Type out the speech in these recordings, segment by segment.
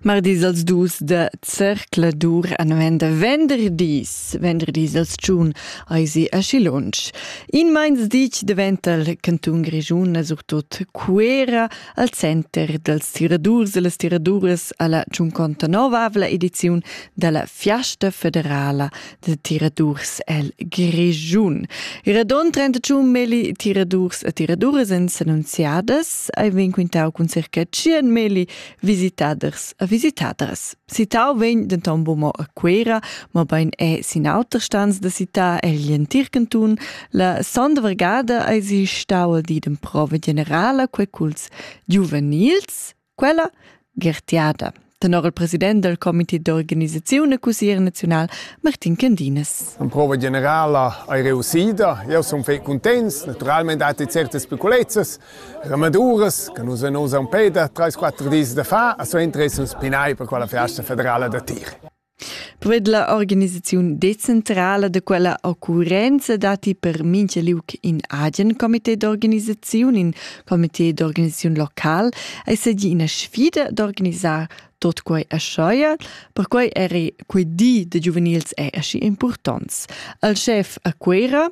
Mardis als dus da Zercladur an venda venderdis. Venderdis als tschun eisi aschi lunsch. In meins ditg daventa il cantun Grischun e surtut Cuera al center dals tiradurs e las tiraduras alla Giunconta Nova avla ediziun dalla Fiasta federala de tiradurs el Grischun. I radon 31 meli tiradurs e tiraduras en annunziadas ei vegn quintau cun circa 100 meli visitaders e visitadras. Citau vegn denton bumo a Quera, ma bein è sin auter stans da città egl entir cantun. La sonda vargada ei si stau al di d'emprova generala quei culs giuvenils Quella Gertiada, tenor il president del comité d'organisazione cusier naziunal Martin Candinas. La prova generala è riuscita, io sono fai contents, naturalmente dati certe speculezias ramaduras che noi non usan peda 3-4 dis da fa, a so interesse un spinai per quella festa federale da tir. Quella organisaziun decentrala da quella occurrenza datti per mincha liuc in agen comité d'organisaziun, in comité d'organisaziun local, ei seigi ina sfida d'organisar tot quei aschia, perquei eri quei di da giuvenils è aschi impurtonts. Al chef a Cuera,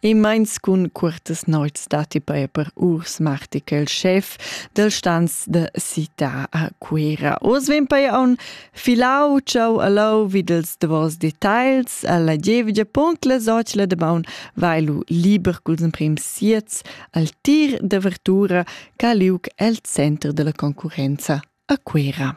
E meins cun cuortas noits datti paia per Urs Martichel, chef del stans de città a Cuera. Oz vegn paia aun filau ciao allau vid els davos details alla gievgia punct la socila de maun vai lu liber culs emprim siets al tir de vertura caliuc el center della concurenza a Cuera.